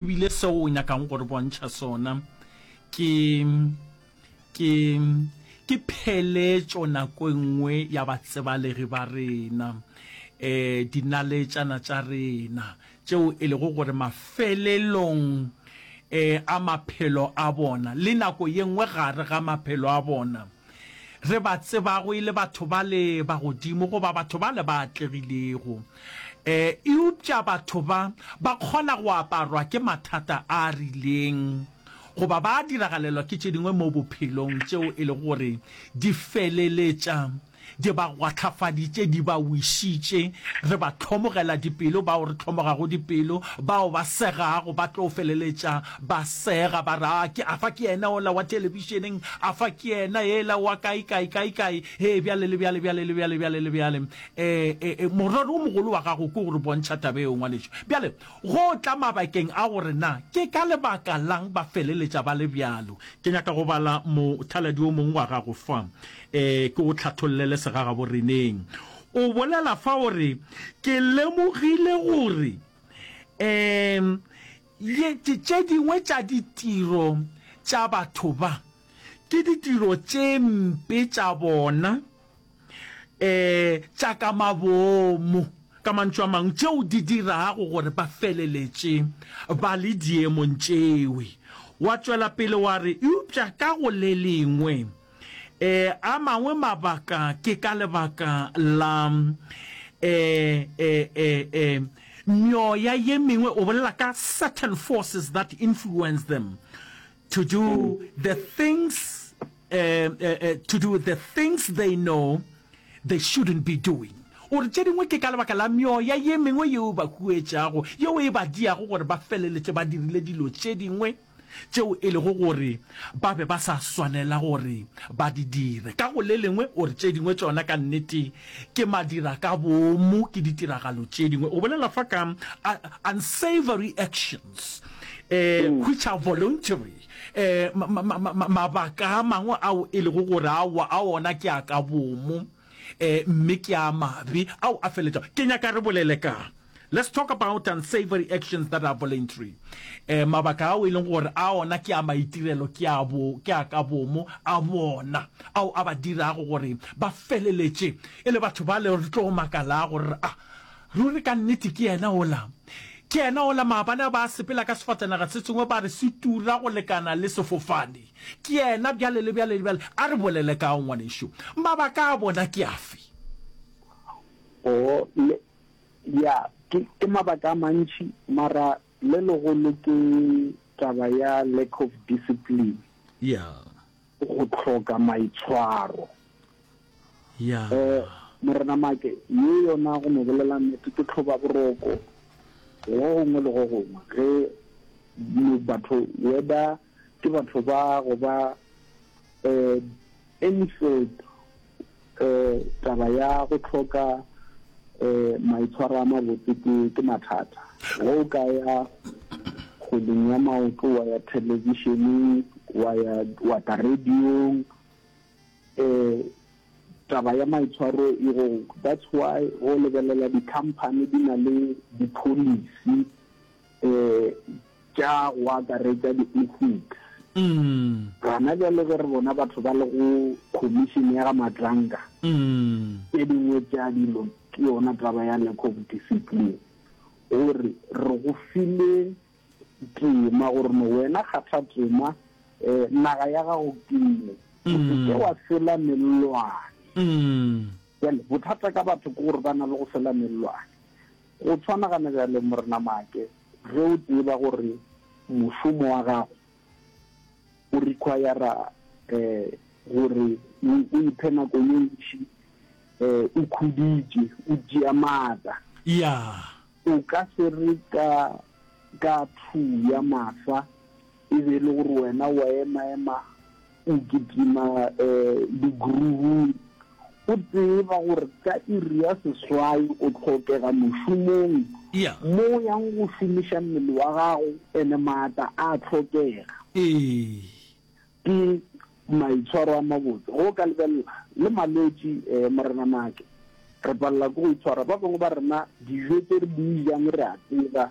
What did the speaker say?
E bile seo o nyakago go re bontšha sona ke, ke, ke pheletšo nako e nngwe ya batsebalegi ba rena, e, dinaletšana tša rena, tšeo e lego gore mafelelong e, a maphelo a bona, le nako ye nngwe gare ga maphelo a bona, re ba tsebago e le batho bale ba godimo goba batho bale ba atlegilego. E, eupša batho ba ba kgona go aparwa ke mathata a rileng goba ba diragalelwa ke tše dingwe mo bophelong tšeo e lego gore di feleletša Di ba kgwahlafaditše, di ba wešitše. Re ba hlomogela dipelo, bao re hlomogago dipelo. Bao ba segago ba tlo feleletša ba sega, ba re, A ke, afa ke yena ola wa thelebišeneng? Afa ke yena ela wa kae-kae, kae-kae? Hee, bjale le bjale, bjale le bjale, bjale le bjale. E, e, morero wo mogolo wa gago ke go re bontšha taba yeo, ngwanešu. Bjale, go tla mabakeng a gore na ke ka lebaka la'ng ba feleletša ba le bjalo. Ke nyaka go bala mothaladi wo mongwe wa gago fa. Ee, ke go hlathollele segagaboreneng. O bolela fa o re, Ke lemogile gore um ye, tše dingwe tša ditiro tša batho ba, ke ditiro tše mpe tša bona um tša ka mabomo, ka mantšu a mangwe, tšeo di dirago gore ba feleletše ba le diemong tšewe. Wa tšwela pele wa re, Eupša ka go le lengwe, A mangwe mabaka ke ka lebaka la meoya ye mengwe, o bolela ka certain forces that influence them to do the things to do the things they know they shouldn't be doing. O re tše dingwe ke ka lebaka la meoya ye mengwe yeo e ba huetšago, yeo e ba diago gore ba feleletše ba dirile dilo tše dingwe. tšeo e lego gore ba be ba sa swanela gore ba di dire. Ka go le lengwe, o re tše dingwe tšona ka nnete ke madira-ka-boomo, ke ditiragalo tše dingwe. O bolela fa ka unsavory actions, um which are voluntary, um mabaka a mangwe ao e lego gore aowa, a ona ke a ka boomo. Ee, mme ke a mabe ao a feletšago. Ke nyaka re bolele ka. Let's talk about unsavory actions that are voluntary. Ee, mabaka ao e leng gore a ona ke a maitirelo ke a bo, ke a ka bomo a bona, ao a ba dirago gore ba feleletše e le batho bale re tlo makalago gore re a, ruri ka nnete ke yena ola. Ke yena ola, maabane a ba sepela ka sefatanaga se sengwe ba re se tura go lekana le sefofane. Ke yena bjale le bjale le bjale. A re bolele ka go, ngwanešu. Mabaka a bona ke afe? Oo, le, ya, ke, ke mabaka a mantši, mara le legolo ke taba ya lack of discipline. Ya. Go hloka maitshwaro. Ya. Eh, Morena Make, ye yona go no bolela nnete ke tlhoba boroko go gongwe le go gongwe, ge batho whether ke batho ba go ba um Enfield um taba ya go tlhoka um maitshwaro a mabotse ke ke mathata go o ka ya kgweding ya maoto wa ya thelebišeneng wa ya wa ta radiong um taba ya maitshwaro e go that's why go lebelela di-company di na le di-policy tša go akaretša di-ethics. Gona bjale ge re bona batho ba le go Khomišene ya ga Matlanga, tše dingwe tša dilo ke yona taba ya lack of discipline. O re, re go file tema gore no wena kgatha tema, naga ya gago ke ye, o se ke wa sela mellwane. Bjale bothata ka batho ke gore ba na le go sela mellwane. Go tshwanagana bjale, Morena Maake, ge o tseba gore mošomo wa gago o require-ra gore o iphe nako ye ntši o khuditše, o tšea maatla, o ka se re ka ka thuu ya mafsa E be e le gore wena o a emaema o kitima di-groove-ung, o tseba gore ka iri ya seswai o tlhokega mošomong mo o yang go šomiša mmele wa gago and-e maatla a a tlhokega. Ke maitshwaro a mabotse ge o ka lebelela le malwetši. Morena Maake, re palela ke go itshwara. Ba bangwe ba rena dijo tse re di jang re a tseba.